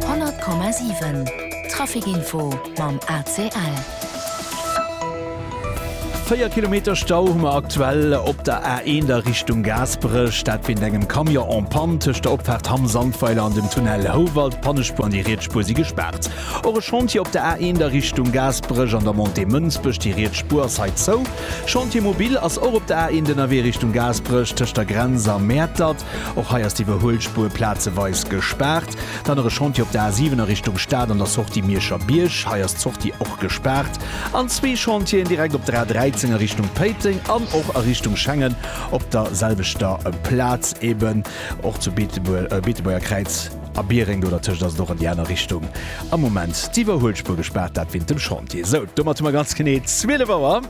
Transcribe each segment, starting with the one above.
100,7 Trafic-Info mam ACL. Véier Kilometer Stau hu mer aktuell op der A1 a Richtung Gaasperech. Dat wéint engem Camion en panne tëscht der Opfaart Hamm Sandweiler an dem Tunnel Houwald. D'Pannespuer an déi riets Spuer si gespaart. Och e Chantier op der A1 a Richtung Gaasperech an der Montée Mënsbech. Déi riets Spuer ass hei zou. Chantier mobil ass och op der A1 ënnerwee Richtung Gaasperech tëscht der Grenz a Mäertert. Och hei ass d'Iwwerhuelspur plazeweis gespaart. Dann nach e Chantier op der A7 a Richtung Stad an der Sortie Mierscher Bierg. Hei ass d'Sortie och gespaart. An zwee Chantieren direkt op der A13 a Richtung Péiteng an och a Richtung Schengen op der selwechter Plaz. Eben och zu Beetebuerger-Kräiz a Biereng, do dertëscht ass et och an déi aner Richtung am Moment d'Iwwerhuelspur gespaart. Dat wéint dem Chantier. Sou, domat hu mer ganz genee 12 Auer.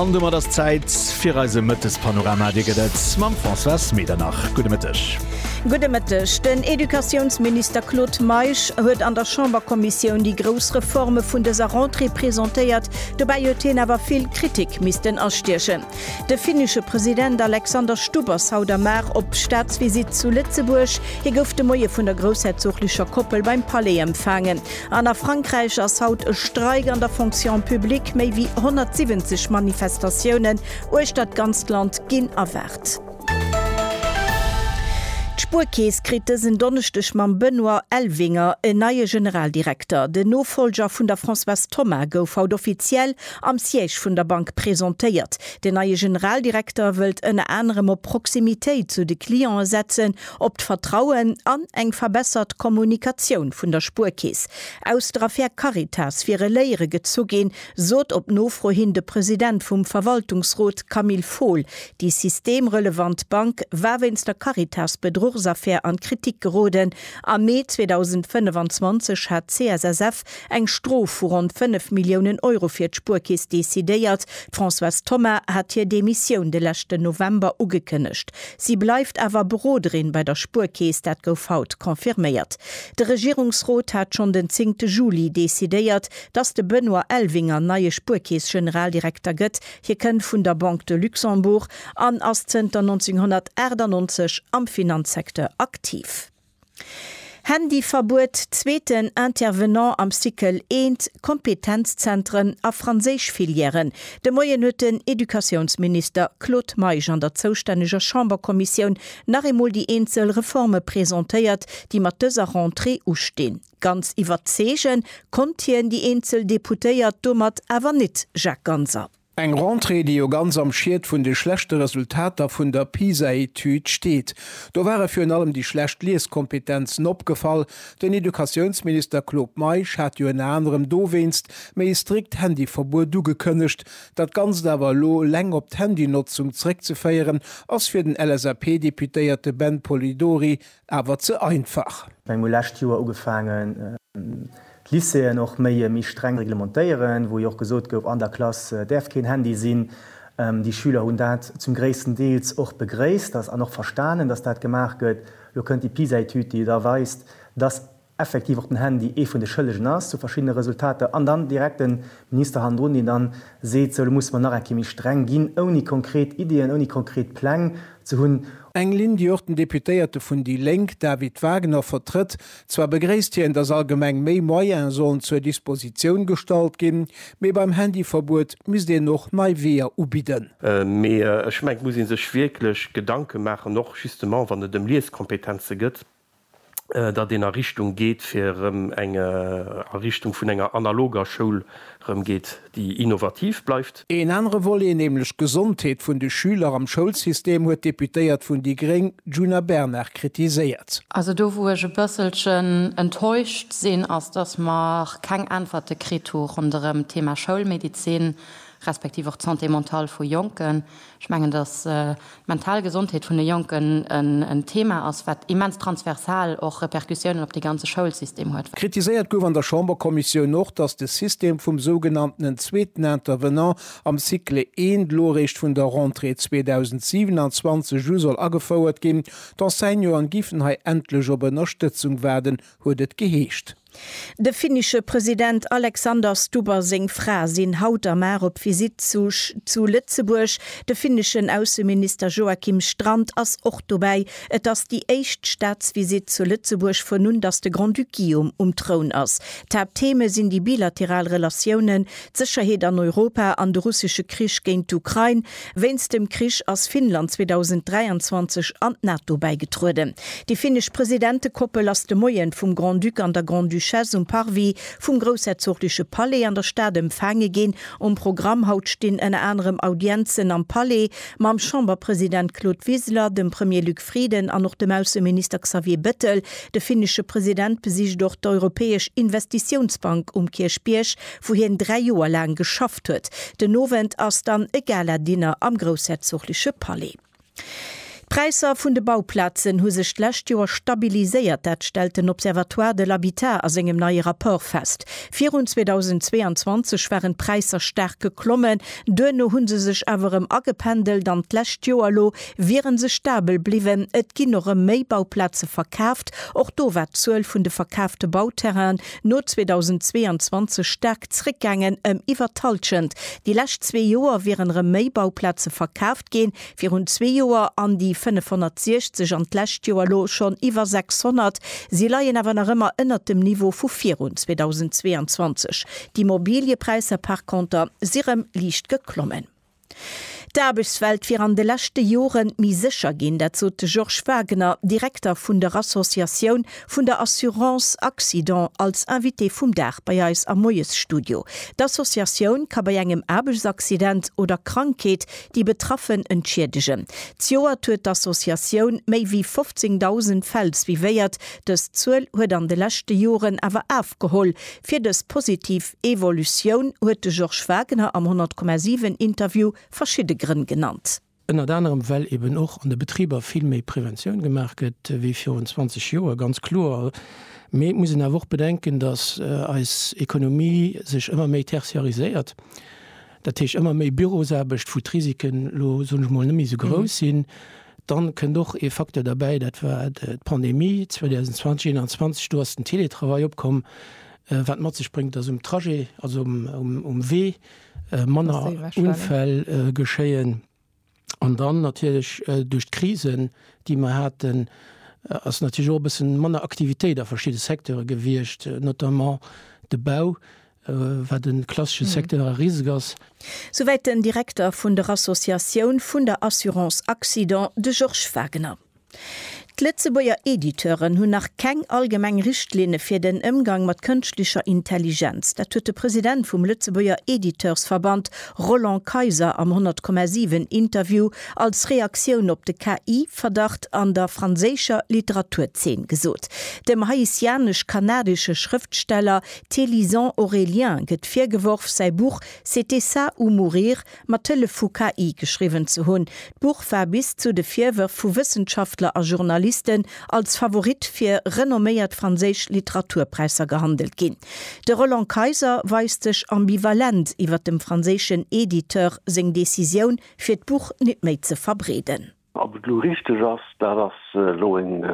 An domat ass d'Zäit fir eise Mëttespanorama. Dee gëtt et mam Françoise Medernach. Gudde Mëtteg. Gudde Mëtteg. Den Educatiounsminister Claude Meisch huet an der Chamberkommissioun déi grouss Reforme vun dëser Rentrée presentéiert. Dobäi huet hien awer vill Kritik missten astiechen. De finnesche President Alexander Stubb ass haut am Mar op Staatsvisitt zu Lëtzebuerg. Hie gouf de Moie vun der groussherzoglecher Koppel beim Palais empfaangen. An a Frankräich ass haut e Streik an der Fonction publique. Méi wéi 170 Manifestatiounen uechter d'ganzt Land ginn erwaart. D'Spuerkeess kritt dësen Donneschdeg mam Benoît Elvinger en neie Generaldirekter. Den Nofollger vun der Françoise Thoma gouf haut offiziell Am Siège vun der Bank presentéiert. Den neie Generaldirekter wëllt ënner anerem op Proximitéit zu de Cliente setzen, op d'Vertrauen an eng verbessert Kommunikatioun vun der Spuerkeess. Aus der Affär Caritas wiere Léiere gezu ginn, sot op Nofro hin de President vum Verwaltungsrot Camille Fohl. Déi systemrelevant Bank war wéinst der Caritas-Bedruchsaffär an d'Kritik geroden. Am Mee 2025 hat d'CSSF Kapp eng Strof vu ronn 5 Milliounen Euro fir d'Spuerkeess decidéiert. D'Françoise Thoma hat hir Demissioun de leschten November ugekënnegt. Si bleift awer Beroderin bei der Spuerkeess, dat gouf haut confirméiert. De Regierungsrot hat schonn den zéngte Juli decidéiert, datt de Benoît Elvinger neie Spuerkeess-Generaldirekter gëtt. Hie kënnt vun der Banque de Luxembourg an ass zënter 1998 am Finanzsecteur aktiv. Handyverbuet, zweeten Intervenant am Cycle eent, Kompetenzzentren a Franséisch-Filièren, De Moien huet den Educatiounsminister Claude Meisch an der zoustänneger Chamberkommissioun nach eemol déi eenzel Reforme presentéiert, déi mat dëser Rentrée ustinn. Ganz iwwerzeege konnt hien déi eenzel Deputéiert domat awer net, Jacques Ganser. Eng Rentrée, déi jo ganz am Schied vun de schlechte Resultater vun der PISA-Etüd steet. Do ware virun allem déi schlecht Lieskompetenzen opgefall. Den Educatiounsminister Claude Meisch hat jo ënner anerem dowéinst méi e strikt Handyverbuet ugekënnegt. Dat Ganzt awer elo eleng op d'Handynotzung zréckzeféieren, ass fir den LSAP-Deputéierte Ben Polidori awer ze einfach. Ech meng, mir hu lescht Joer ugefaangen, d'Lycéeën och méi méi streng reglementéieren, wou jo och gesot gouf, an der Klass däerf keen Handy sinn. Déi Schüler hunn dat zum gréissten Deels och begréisst, dass an och verstanen, dass dat gemaach gëtt. Elo kënnt déi PISA-Etüd, déi da weist, dass effektiv och den Handy ee vun de Schëllegen ass zu verschiddene Resultater, an dann direkt de Minister hannendrun, deen dann seet, sou elo musse mer nach eng Kéier méi streng ginn, ouni konkret Ideeën, ouni konkret Pläng. ze hunn. Eng Linn, déi och den Deputéierte vun déi Lénk David Wagner vertrëtt. Zwar begréisst hien, datt allgemeng méi Moyene sollen zur Dispositioun gestallt ginn, mee beim Handyverbuet misst een och nei Weeër ubidden. Mee ech mengen, et muss ee sech wierklech Gedanke maachen, och justement wann et ëm Lieskompetenze gëtt. datt een a Richtung geet fir erëm eng, a Richtung vun enger analoger Schoul erëm geet, déi innovativ bleift. Een anere Volet, nämlech d'Gesondheet vun de Schüler am Schoulsystem, huet d'Deputéiert vun déi gréng Djuna Bernard kritiséiert. Also do wou ech e bësselchen enttäuscht sinn, ass datt mer keng Äntwerte kritt hu ronderëm d'Thema Schoulmedezin, respektiv och d'Santé mentale vu Jonken. Ech mengen, dass d'mental Gesondheet vun de Jonken en Thema ass, wat immens transversal och Repercussiounen op de ganze Schoulsystem huet. Kritiséiert gouf an der Chamberkommissioun och, dass de System vum sougenanntenen zweeten Intervenant am Cycle I elo eréischt vun der Rentrée 2027 u soll agefouert ginn. D'Enseignanten giffen hei endlech op Ënnerstëtzung waarden, huet et geheescht. De finnische President Alexander Stubb a seng Fra sinn haut a mar op Visitt zu Lëtzebuerg. De finneschen Ausseminister Joakim Strand ass och dobäi. Et ass déi éischt Staatsvisitt zu Lëtzebuerg vun un datt de Grand-Duc Guillaume um Troun ass. D'Haapttheme sinn déi bilateral Relatiounen, d'Sécherheet an Europa an de russesche Krich géint d'Ukrain. Wéinst dem Krich ass Finnland 2023 an d'NATO bäigetrueden. Déi finnesch Presidentekoppel ass de Moien vum Grand-Duc an der Grande-Duchesse um Parvis vum groussherzogleche Palais an der Stad empfaange ginn. Um Programm haut stinn ënner anerem Audienzen am Palais mam Chamberpresident Claude Wiseler, dem Premier Luc Frieden an och dem Ausseminister Xavier Bettel. De finnesche President besicht och d'Europäesch Investitiounsbank um Kierchbierg, wou hien dräi Joer laang geschafft huet. Den Owend ass dann e Gala-Dinner am groussherzogleche Palais. D'Präisser vun de Bauplazen hu sech d'lescht Joer stabiliséiert. Dat stellt den Observatoire de l'habitat a sengem neie Rapport fest. Virun 2022 waren d'Präisser staark geklommen, duerno hu se sech awer erëm agependelt an d'lescht Joer elo wiere se stabel bliwwen, et ginn och rëm méi Bauplaze verkaaft. Och do war d'Zuel vun de verkaafte Bauterrainen no 2022 staark zréckgaangen, ëm iwwer d'Hallschent. Déi lescht zwee Joer wieren rëm méi Bauplaze verkaaft ginn, virun zwee Joer an déi 560 an d'lescht Joer elo schonn iwwer 600. Si leien awer nach ëmmer ënnert dem Niveau vu virun 2022. D'Immobiliëpräisser par conter si rëm liicht geklommen. D'Aarbechtswelt wier an de leschte Jore méi sécher ginn. Dat sot de Georges Wagner, Direkter vun der Associatioun vun der Assurance Accident, als Invité vum Dag bei eis am Moiesstudio. D'Associatioun ka bei engem Aarbechtsaccident oder Krankheet déi Betraffen entschiedegen. Zejoert huet d'Associatioun méi wéi 15.000 Fäll suivéiert. Dës Zuel huet an de leschte Joren awer afgeholl, Fir dës positiv Evolutioun huet de Georges Wagener am 100,7 Interview verschidde Grënn genannt. Ënnert anerem well eben och an de Betriber vill méi Preventioun gemaach gëtt wéi virun 20 Joer, ganz kloer. Mee et muss een awer och bedenken, datt eis Ekonomie sech ëmmer méi tertiariséiert. dat heescht ëmmer méi Bürosaarbecht, wou d'Risiken elo, soen ech mol, net méi esou grouss sinn, dann kënnt och ee Facteur derbäi, dat war d'Pandemie 2020/21, do ass den Télétravail opkomm, wat mat sech bréngt, dass um Trajet, also um Wee, manner Unfäll geschéien. An dann natierlech duerch d'Krisen, déi mer haten, ass natierlech och e bësse manner Aktivitéit a verschidde Secteure gewiescht, notamment de Bau, wat e klassesche Secteur a risek ass. Souwäit den Direkter vun der Associatioun vun der Assurance Accident, de Georges Wagener. D'Lëtzebuerger Editeuren hunn nach keng allgemeng Richtlinne fir den Ëmgang mat kënschtlecher Intelligenz. Dat huet de President vum Lëtzebuerger Editeursverband Roland Kayser am 100,7 Interview als Reaktioun op de KI-Verdacht an der franséischer Literaturzeen gesot. Dem haitianesch-kanadesche Schrëftsteller Thélyson Aurélien gëtt virgeworf, säi Buch C'était ça ou mourir mat Hëllef vu KI geschriwwen ze hunn. D'Buch war bis zu de Virwërf vu Wëssenschaftler a Journalisten als Favorit fir renomméiert franséisch Literaturpräisser gehandelt ginn. De Roland Kayser weist sech ambivalent iwwer dem franséischen Editeur seng Decisioun, fir d'Buch nit méi ze verbreeden. Ob et elo richteg ass, dat ass elo eng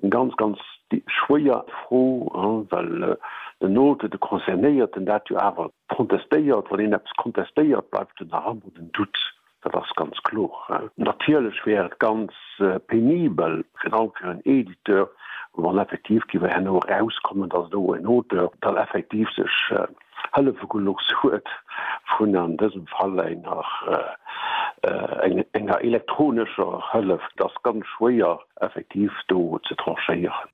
ganz, ganz schwéier Fro, well den Note, de Concernéierten, dat jo awer contestéiert. Wann een eppes contestéiert, bleift jo nach ëmmer den Doute, dat ass ganz kloer. Natierlech wär et ganz penibel, virun allem fir en Editeur, wann effektiv géif herno erauskommen, dass do en Auteur dann effektiv sech Hëllefegelux huet vun an dësem Fall enger enger elektronescher Hëllef. Et ass ganz schwéier effektiv do ze tranchéieren.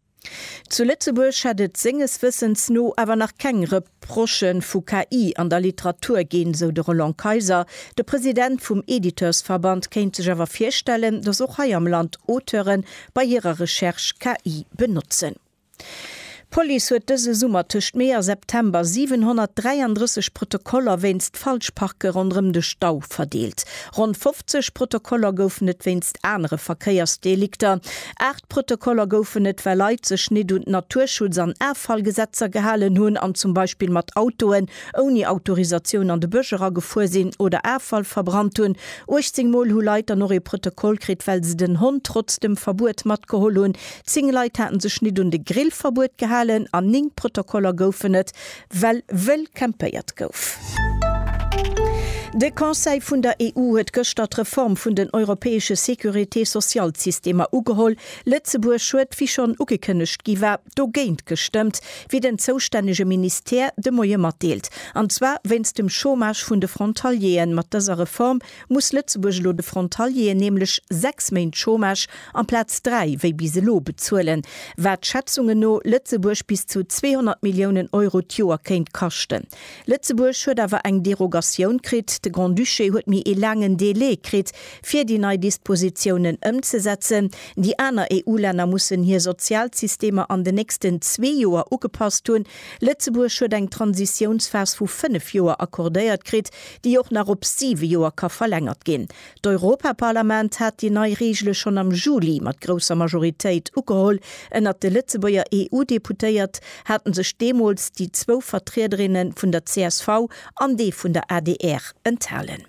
Zu Lëtzebuerg hätt et senges Wëssens no awer nach keng Reprochë vu KI an der Literatur ginn, sou de Roland Kayser. De President vum Editeursverband kéint sech awer virstellen, datt och hei am Land Auteure bei hirer Recherche KI benotzen. D'Police huet dëse Summer tëscht Mee a September 733 Protokoller wéinst Falschparke ronderëm de Stau verdeelt. Ronn 50 Protokoller goufen et wéinst anere Verkéiersdelikter. Aacht Protokoller goufen et, well Leit sech nit un d'Naturschutz an Affallgesetzer gehalen hunn an zum Beispill mat Autoen ouni Autorisatioun an de Bësch eragefuer sinn oder Affall verbrannt hunn. 18 Mol hu Leit dann och ee Protokoll kritt, well se den Hond trotz dem Verbuet matgeholl hunn, Zéng Leit haten sech nit un de Grillverbuet gehalen an néng Protokoller goufen et, well wëll campéiert gouf. De Conseil vun der EU huet gëschter d'Reform vun den europäesche Sécurité-sociale-Systemer ugeholl. Lëtzebuerg huet, wéi schonn ugekënnegt gi war, dogéint gestëmmt, wéi den zoustännege Ministère de Moie matdeelt, an zwar wéinst dem Chômage vun de Frontalieren. Mat dëser Reform muss Lëtzebuerg elo de Frontalieren nämlech sechs Méint Chômage amplaz dräi wéi bis elo bezuelen, wat Schätzungen no Lëtzebuerg bis zu 200 Milliounen Euro d'Joer kéint kaschten. Lëtzebuerg huet awer eng Derogatioun kritt. De Grand-Duché huet méi ee laangen Delai kritt, fir déi nei Dispositiounen ëmzesetzen. Déi aner EU-Länner mussen hir Sozialsystemer an den nächsten zwee Joer ugepasst hunn. Lëtzebuerg huet eng Transitiounsphas vu fënnef Joer accordéiert kritt, déi och nach op siwe Joer ka verlängert ginn. D'Europaparlament hat déi nei Reegele schonn am Juli mat grousser Majoritéit ugeholl. Ënnert de Lëtzebuerger EU-Deputéiert hate sech deemools déi zwou Vertriederinne vun der csv an dee vun der adr enthalen.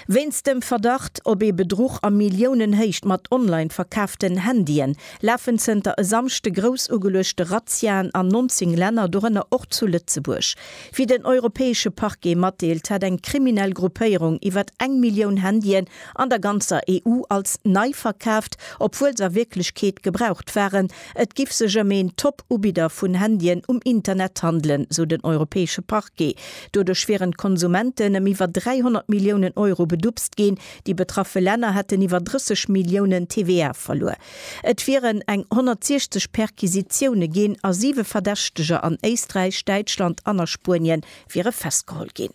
Wéinst dem Verdacht op ee Bedruch a Milliounenhéicht mat online verkaaften Handyen lafen zënter e Samschde grouss ugeluechte Razziaen an 19 Länner, dorënner och zu Lëtzebuerg. Wéi den europäesche Parquet matdeelt, hätt eng kriminell Gruppéierung iwwer eng Millioun Handyen an der ganzer EU als nei verkaaft, obwuel se a Wierklechkeet gebraucht waren. Et giff sech ëm een Top-Ubidder vun Handyen um Internet handelen, sou den europäesche Parquet. Doduerch wieren d'Konsumenten ëm iwwer 300 Milliounen Euro bedupst ginn. Déi betraffe Länner hätten iwwer 30 Milliounen TVA verluer. Et wieren eng 160 Perquisitioune ginn a siwe Verdächteger an Éisträich, Däitschland an a Spuenie wiere festgeholl ginn.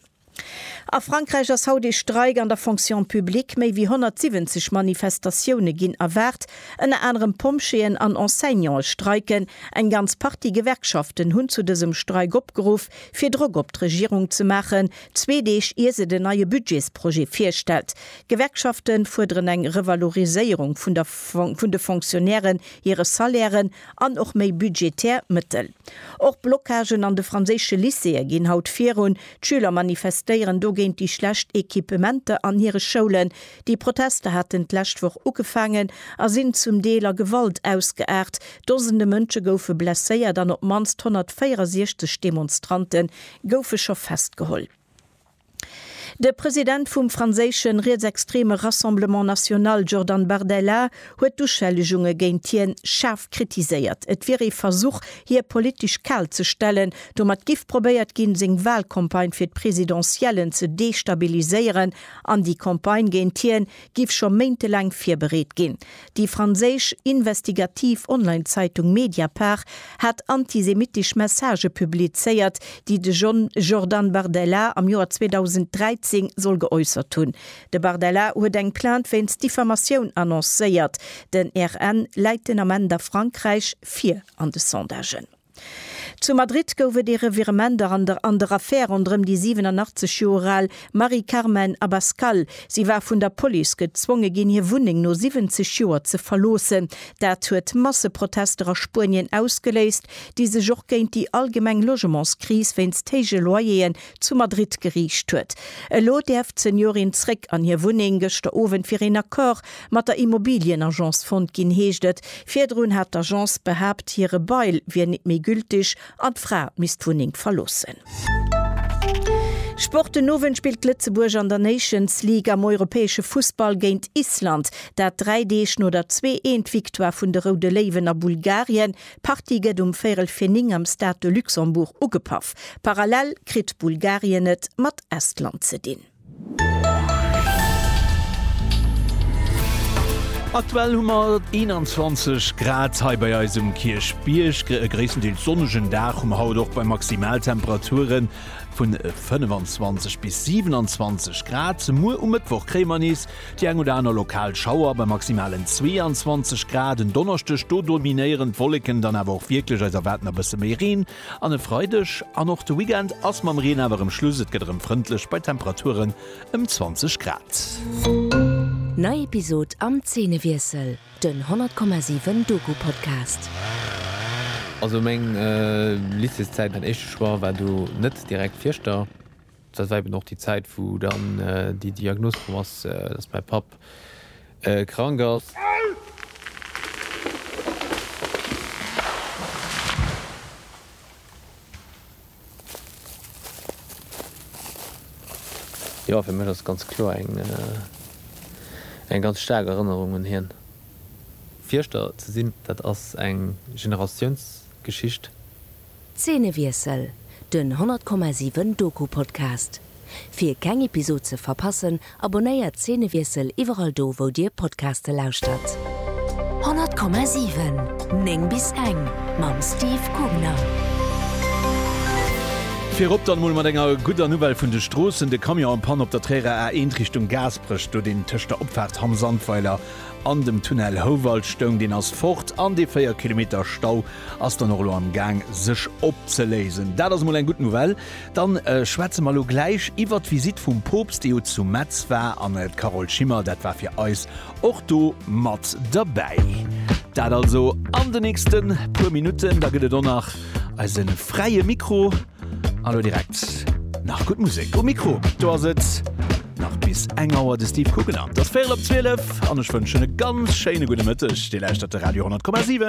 A Frankräich ass haut ee Streik an der Fonction publique. Méi wéi 170 Manifestatioune ginn erwaart. Ënner anerem Pompjeeën an Enseignante streiken. Eng ganz Partie Gewerkschaften hunn zu dësem Streik opgeruff, fir Drock op d'Regierung ze maachen, zwee Deeg ier se den neie Budgetsprojet virstellt. D'Gewerkschafte fuerderen eng Revaloriséierung vun der vun de Fonctionnairen hire Salairen an och méi budgetär Mëttel. Och Blockagen an de franséische Lycéeë ginn haut virun. D'Schüler manifestéieren do géint déi schlecht Equipementer an hire Schoulen. Déi Protester haten d'lescht Woch ugefaangen a sinn zum Deel a Gewalt ausgeaart. Dosende Mënsche goufe blesséiert an op d'mannst 164 Demonstrante goufe scho festgeholl. De President vum franséische rietsextreme Rassemblement National Jordan Bardella huet d'Uschellegunge géint hien schaarf kritiséiert. Et wier ee Versuch, hie politesch kal ze stellen. Domat giff probéiert ginn, seng Walcampagne fir d'Presidentiellen ze destabiliséieren an déi Campagne géint hien giff scho méintelaang virbereet ginn. Déi franséisch investigativ Online-Zeitung Mediapart hat antisemitesch Messagë publizéiert, déi de John Jordan Bardella am Joer 2013 soll geäussert hunn. De Bardella huet eng Plainte wéinst Diffamatioun annoncéiert. Den RN läit den Ament a Frankräich vir an de Sondagen. Zu Madrid gouf et ee Revirement a an der an der Affär ronderëm déi 87 Joer al Mari Carmen Abascal. Si war vun der Police gezwonge ginn, hir Wunneng no 70 Joer ze verloossen. Dat huet Masseprotester a Spuenien ausgeléist, déi sech och géint déi allgemeng Logementskris wéinst héije Loyer'en zu Madrid geriicht huet. Elo däerf d'Seniorin zréck an hir Wunneng. Gëschter Owend wier een Accord mat der Immobilienagence fonnt ginn, heescht et. Virdrun hat d'Agence behaapt, hire Bail wier nit méi gültig an d'Fra misst d'Wunneng verloossen. Sport, Den Owend spillt Lëtzebuerg an der Nations League am europäesche Fussball géint Island. Dat dräi Deeg no der Zwee-Eent-Victoire vun de Roude Léiwen a Bulgarien. D'Partie gëtt um Véirel fir 9 am Stade de Luxembourg ugepaff. Parallel kritt Bulgarien et mat Estland ze dinn. Aktuell hu mer 21 Grad hei bei eis um Kierchbierg. E gréisstendeels sonnegen Dag hu mer haut och bei Maximaltemperature vun 25 bis 27 Grad. Muer um Mëttwoch kréie mer nees Déi eng oder aner lokal Schauer bei maximalen 22 Grad en Donneschdeg. Do dominéieren d'Wolleken dann awer och wierklech, eis erwaarden e bësse méi Reen an e Freideg an och de Weekend ass mam Reen awer erëm Schluss. Et gëtt erëm frëndlech bei Temperaturen ëm 20 Grad. Nei Episod am Zeenewiessel, den 100,7 Doku-Podcast. Also meng Lycéeszäit, mäin éischte Choix war do net direkt Fieschter. Dat war eben och déi Zäit, wou dann déi Diagnos komm ass, dass mäi Papp krank ass. Jo, fir mech ass et ganz kloer eng ganz staark Erënnerung un hien. Fierschter ze sinn, dat ass eng Generatiounsgeschicht. Zeenewiessel, den 100,7 Doku-Podcast. Fir keng Episod ze verpassen, abonnéiert Zeenewiessel iwwerall do wou dir Podcaste lauschtert. 100,7 9 bis eng mam Steve Gubner. Virop dann mol mat enger gudder Nouvelle vun de Stroossen, de Camion en panne op der Tréierer A1 Richtung Gaasperech, do deen tëscht der Opfaart Hamm-Sandweiler An dem Tunnel Houwald stoung, deen ass fort an dee 4 Kilometer Stau ass dann och elo am Gaang sech opzeléisen. Dat ass emol eng gutt Nouvelle. Dann schwätze mer elo gläich iwwert d'Visitt vum Poopst, dee jo zu Metz war an d'Carole Schimmer, dat war fir eis och do mat derbäi. Dat also an de nächste puer Minutten. Da gëtt et och nach eise fräie Mikro. An elo direkt nach gutt Musek. Um Mikro do ass et nach bis eng Auer de Steve Guggenann. Et ass véierel op 12 an ech wënschen e ganz schéine gudde Mëtteg. Dir lauschtert de Radio 10,7.